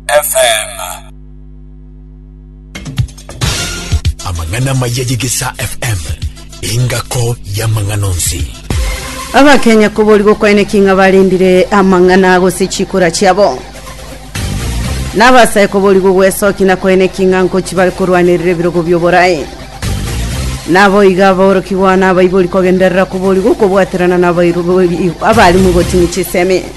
FM. Amang'ana amaya y'Egesaa FM, engako y'amang'ana onsi. Abakenya koborigwa kwaeneki ng'a barendire amang'ana gose chikura chiabo nabasae koborigwa gwesoki na kwaeneki ng'a nkochi bare korwanerera ebirogo bioborae naboiga aborokigwa na abaibori kogenderera koborigwa kobwaterana na abairu- abarimu gotini chisemi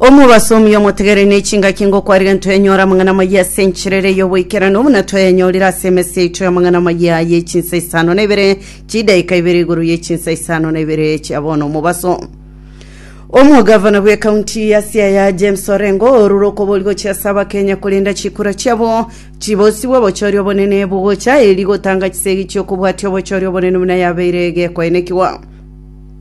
omobasomi omotegere ne chingaki ngokwarire ntwenyora amang'ana maya ase enchirere y'oboikeranu buna tweyanyorire ase emesi yaito y'amang'ana maya ye chinsa isano na ibere chidaika ibere igoro ye chinsa isano na ibere chia bono omobaso omogavana bw'ekaunti ya siaya james orengo orure okobori gochia ase abakenya korenda chikura chiabo chibosi bw'obochori obonene bogocha eri gotanga chisegi chi'okobwatia obochori obonene buna yabeire gekoenekiwa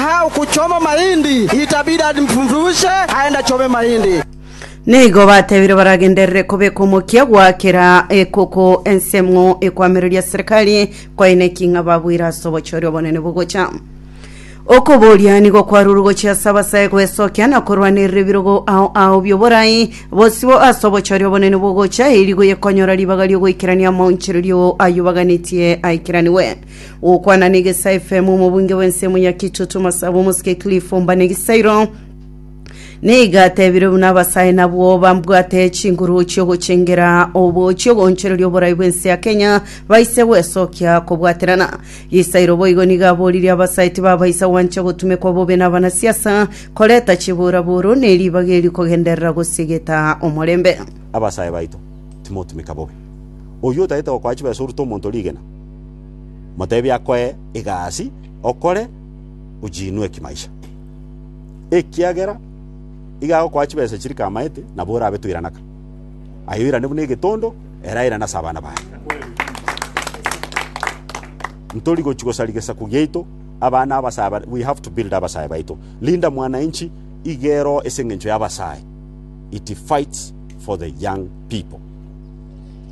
How ku choma mahindi, itabida ndifundushe aenda chome mahindi. Nigo batebire baragenderere kobeka omokia gwa kera ekoko ense ng'o ekwamereria serikali kwaine ki ng'a babwire ase obochori obonene bogocha. Okoboria nigo kwarure gochia ase abasae gwesokia na korwanerera ebirogo ao ao bi'oborai bosibo ase obochori obonene bogocha, erio rigo yekonyora ribaga ri'ogoikerania amaonchererio ayobaganetie aikeranewe. gokwana negesa fm omobunge bwensemo ya kichoto masabo omosike cliff omba negisairo neiga atebire buna abasae nabwo bambwate chinguru chiogochengera obo chiogonchereria oborai bwense ya kenya baise gwesokia kobwaterana gisairo boigo niga aboririe abasae tibabaisa gwancha gotumekwa bobe na abanasiasa koreta chiburaburu neribaga eri kogenderera gosigeta omorembe abasae baito timotumeka bobe. Oyio otagete gokoa chibesa orute omonto rigena. Moteebie akoe egasi, okore, ochiinwe ekimaisha. Ekiagera iga agokoa chibesa chiria kamaete, nabo orabe toiranaka. Aye oirane buna egetondo, ere airane ase abana baye. Ntori gochia gosaria gesaku giaito, abana abasae bare, we have to build abasae baito. Linda Mwananchi iga ero ase eng'encho y'abasae, it fights for the young people.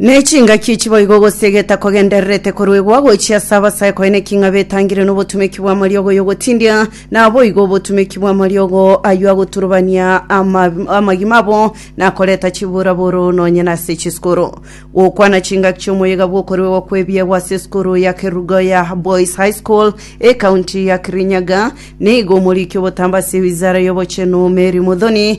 Ne chingaki echi boigo gose egeta kogendererete koruegwa gochia ase abasae konya ne king'abe etangire nobotumeki bw'amariogo y'ogotindia, naboigo obotumeki bw'amariogo ayio agoturubania ama- amagima abo na koreta chiburaburo nonye nase chisukuru. Gokwana chingaki chi'omoyega bw'okoruegwa kw'ebiegwa ase esukuru ya Kerugoya Boys High School, ekaunti ya Kirinyaga, nigo omoriki obotambe ase ewizara y'obochenu Mary Muthoni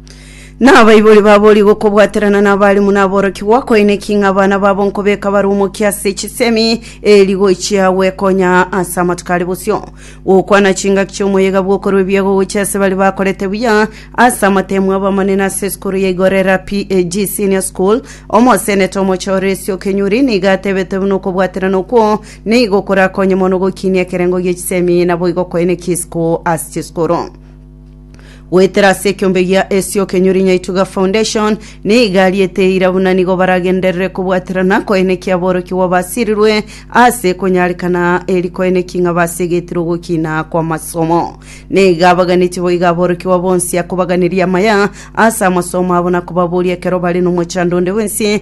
Na abaibori baborie gokobwaterana n'abarimu na aborokigwa koine ki ng'a abana babo nkobeka bare omokia ase chisemi eri gochia gwekonya ase amatuko are bosio. Gokwana chingaki chi'omoyega bw'okorwa ebiago gochia ase baria bakorete buya ase amatemu abamanene ase esukuru ya Igorera PAG Senior School. Omoseneta omoche o Resi Okenyuri nigo atebete buna okobwaterana okwo nigo korakonye mono gokinia ekerengo gie chisemi naboigo koine ki isiko ase chisukuru. goetera ase ekeombe gia Esio Kenyuri Nyaituga Foundation, niga ariete eira buna nigo baragenderere kobwaterana koenekia aborokigwa basirirwe ase konyarekana eri koenekia ng'a basegetirwe ogokina kw'amasomo. Niga baganetie boiga aborokigwa bonsi akobaganeria amaya ase amasomo abo na kobaboria ekero bare nomochando onde bwensi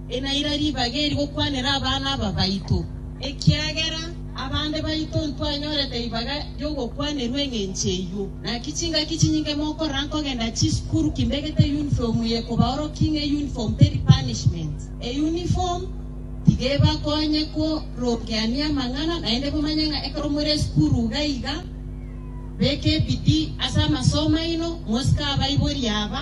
Enaira ribaga eri gokwanera abana aba baito, ekiagera abande baito ntwanyorete ribaga ri'ogokwanerwa engencho eyio. Naki chingaki chinyinge mokorora nkogenda chisukuru kimbegete yunifomu ye kobaorokia ng'a eyunifomu teri punishment. Eyunifomu tiga ebakonye korokeania amang'ana, naende momanye ng'a ekero more esukuru iga iga, beka ebidii ase amasomo aino, mosike abaiboria aba.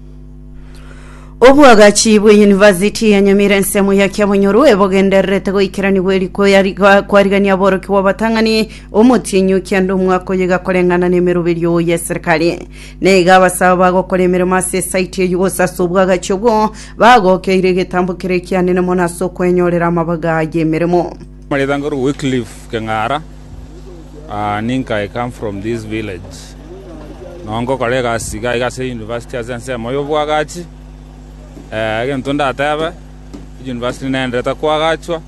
obwagachi bw'eyunivasiti ya nyamira ensemo ya kiabonyoru ebogendererete goikeranigwa eri kwariga- kwarigania aboroki bw'abatang'ani omotienyi okianda omwaka oyo iga koreng'ana n'emeroberio ya eserikari na iga abasaba bagokora emeremo ase esaiti eyio gose ase obwagachi obwo bagokeire egetambo kere ekianene mono ase okwenyorera amabaga y'emeremo Ritango ria Wycliffe Keng'ara, Ninka I come from this village, no ngokora egasi iga iga ase University ase ensemo y'obwagachi. Egento ndatebe, University nenderete kwagachwa,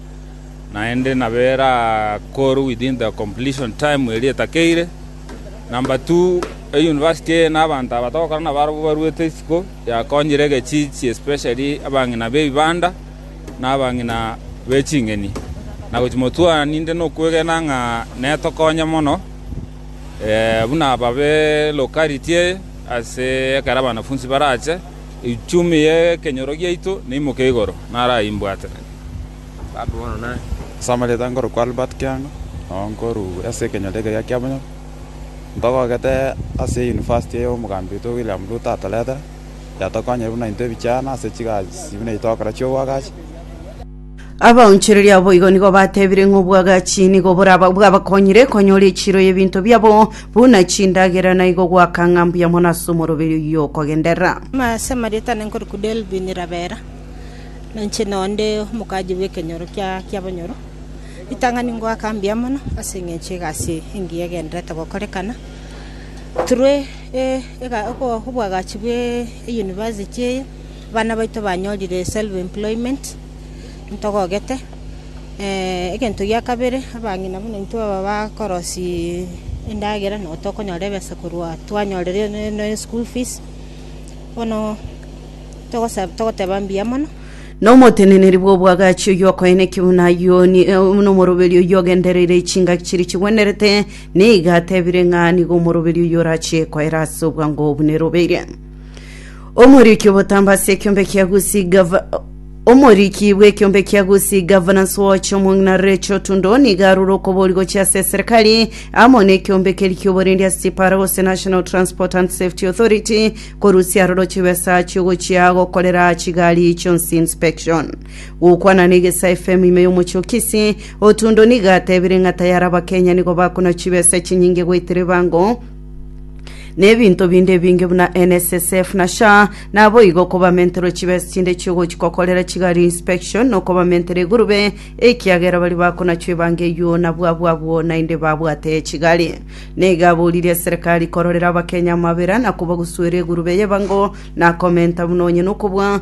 naende nabo erakorwe within the completion time eria etakeire. Number two, University eye na abanto aba togokora nabo arabwo baruete isiko, yakonyire egechichi especially abang'ina b'ebibanda. na abang'ina be ching'eni, na gochimotwara ninde nokwegena ng'a netokonye mono, buna ababe lokariti eye ase ekero abanafunsi barache, echumi y'ekenyoro giaito neimoke igoro, naraimbwatere. Ase amarieta nkorokwa Albert Kiang'a, nao nkoruu ase ekenyoro ekeya kiabonyango, ntogogete ase eyunivasiti eye omogambi oito William Ruto atoretera. yatokonyire buna intwe ebichano ase chigasi buna itokora chi'obwagachi. Abaonchoreria abo igo nigo batebire ng'a obwagachi nigo boraba bwabakonyire konyora echiiro y'ebinto biabo, buna chindagera, na igo goaka ng'a mbuya mono ase omoroberi oyio okogenderera. Ase amarieta ane nkorokwa Delvin Rabera, na inche nao nde omokaaji bw'ekenyoro kia kiabonyoro. Ritang'ani ngoaka mbuya mono ase eng'encho egasi eye engiya egendererete gokorekana. Through Obwagachi bwe University eye, abana baito banyorire self employment, ntogogete. Egento gia kabere, abang'ina buna intwe aba bakorosia endagera, nabo tokonyora ebesa korwa twanyorire ne school fees, bono togoteba mbuya mono. Na omoteneneri bw'obwagachi oyio okoenekia buna Yoni, buna omoroberi oyio ogendereire chingaki chiria chigwenerete, Nigo atebire ng'a nigo omoroberi oyio orachie koera ase obwango obu nerobeire. Omoriki obotamba ase ekiombe kia Gusi gava omoriki bw'ekiombe kia Gusi Governance Watch omong'ina Rachel Tundo nigo arure okobori gochia ase serikali amo n'ekiombe keri ki'oborendi ase chipara gose National Transport and Safety Authority korusia aroro chibesa chiogochia gokorera chigari chionsi inspection. Gokwana negesa FM ime yomochie o Kisii, Otundo nigo atebire ng'a tayari Abakenya nigo bakona chibesa echinyinge goetera ebango na ebinto binde ebinge buna NSSF na SHA, naboigo kobamenterwe chibesa chinde chiogochikokorera chigari inspection na okobamentera egurube ekiagera baria bakonachwa ebango eyio nabwo abwo abwo naende babwate chigari. Nigo aboririe serikali kororera Abakenya amabera na kobagusuera egurube y'ebango na komenta buna onye nokobua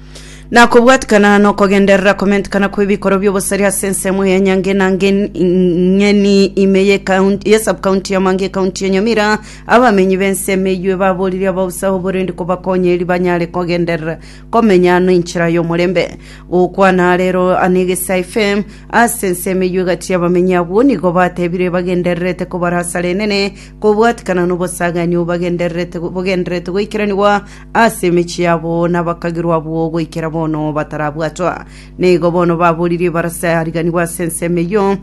na kobwatikana nokogenderera komentikana kw'ebikorwa by'obosaria ase ensemo ya nyange na ngen- ng'eni ime ye kaunti- ye subcounty ya mange ekaunti ya nyamira abamenyi b'ense emeywe baboririe abaosaho oborindi kobakonya eri banyare kogenderera komenya ano enchera y'omorembe gokwana rero anegesa fm ase ense emeywe gati y'abamenyi agwo nigo batebire bagendererete kobarasara enene kobwatikana n'obosagani obagendererete bogendererete goikeraniwa ase emechie yabo, na bakagirwa abwo goikera bono batarabwatwa. Na igo bono baboririe ebarasa yariganigwe ase ensemo eyio,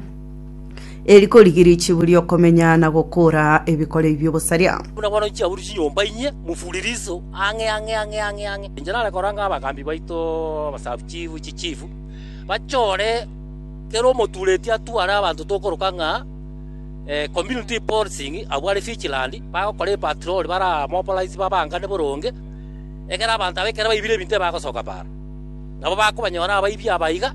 eri korigiria chiburi y'okomenya na gokoora ebikoreri bi'obosaria. Buna bono chiaburi chinyomba inye mufure riso ang'e ang'e ang'e ang'e ang'e. Inche nare koranga abagambi baito abasabuchifu chichifu bachore kera omotureti atware abanto tokoroka ng'a Community Policing abwo are vigilant, bagokora epatrol baramobilize babangane boronge, ekero abanto aba ekero baibire ebinto ebagosoka baaro, nabo bakobanyora abaibi aba iga.